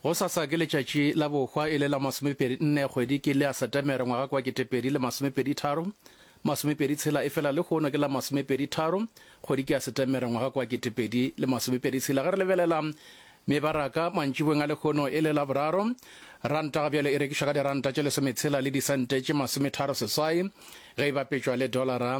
Go sasa ke letšatši la bohwa e le la masomepedi nne kgwedi ke le a Setemere ngwaga kwa ketepedi le masomepedi tharo masomepedi tshela efela le hono ke la masomepedi tharo kgwedi ke a Setemere ngwaga kwa ketepedi le masomepedi tshela ge re lebelela mebaraka mantšibong a lekgono e le la boraro ranta ga bjale e rekišwa ka diranta tše lesometshela le disente tše masometharo seswai ge e bapetšwa le dolara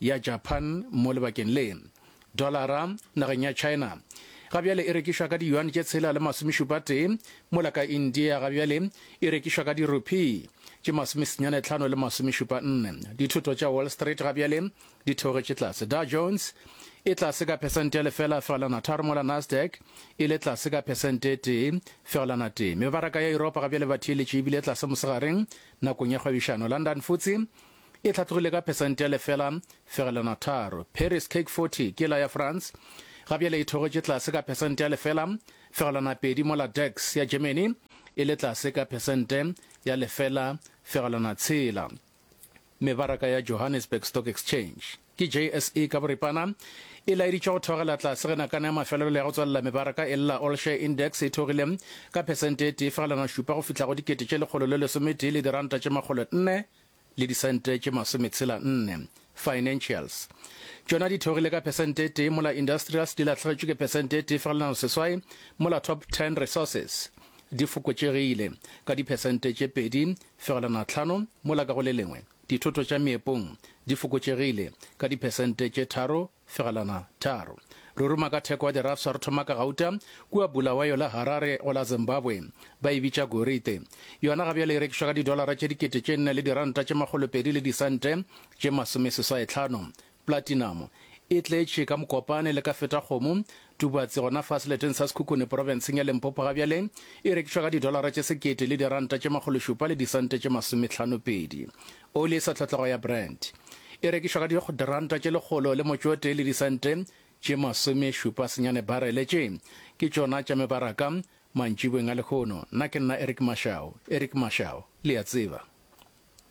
ya Japan mo lebakeng le. Dolara nageng ya China ga bjale e rekišwa ka diyuan tše tshela le masomešupatee, mola ka India ga bjale e rekišwa ka dirupee tše masomesenyane tlhano le masomešupa nne. Dithoto tša Wall Street ga bjale di theogetše tlase. Dow Jones e tlase ka phesente ya lefela fegelana tharo mola Nasdaq e le tlase ka phesente e tee fegelana tee. Mebaraka ya Yuropa ga bjale ba theeletše ebile tlase mosegareng nakong ya kgwebišano. London Futse E hlatlogile ka phesente ya lefela fegelwana tharo. Paris CAC 40 ke la ya France, ga bjale e theogetše tlase ka phesente ya lefela fegelwana pedi mola DAX ya Germany e le tlase ka phesente ya lefela fegelwana tshela. Mebaraka ya Johannesburg Stock Exchange, ke JSE ka boripana, e laeditše go theogela tlase ge nakana ya mafelelo ya go tswalela mebaraka e lla. All Share Index e theogile ka phesente e tee fegelwana šupa go fihla go dikete tše lekgolo le lesometee le diranta tše makgolo nne le disente tše masometshela nne, financials. Tšona di theogile ka phesente e tee mola industrials di lahlegetšwe ke phesente e tee fegelano seswai mola top ten resources di fokotšegile ka diphesente tše pedi fegelano tlhano mola ka go le lengwe dithoto tša meepong di fokotšegile ka diphesente tše tharo Fegelwana, tharo. Re ruma ka theko ya dirafsa re thoma ka gauta, kua Bulawayo le Harare go la Zimbabwe. Ba e bitša gorite. Yona ga bjale e rekišwa ka didolara tše dikete tše nne le diranta tše makgolopedi le disente tše masomeseswaetlhano. Platinamo e tletše ka mokopane le ka feta kgomo, Tubatse, gona fa seleteng sa Sekhukhune porofenseng ya Limpopo ga bjale, e rekišwa ka didolara tše sekete le diranta tše makgološupa le disente tše masometlhanopedi. Oli e sa tlhotlhago ya Brent e rekišwa ka diranta tše lekgolo le motsotee le disente tše masomešupa senyane barele. Tše ke tšona tša mebaraka mantšiboeng a lehono. Nna ke nna Eric Mashau. Eric Mashau, le a tseba.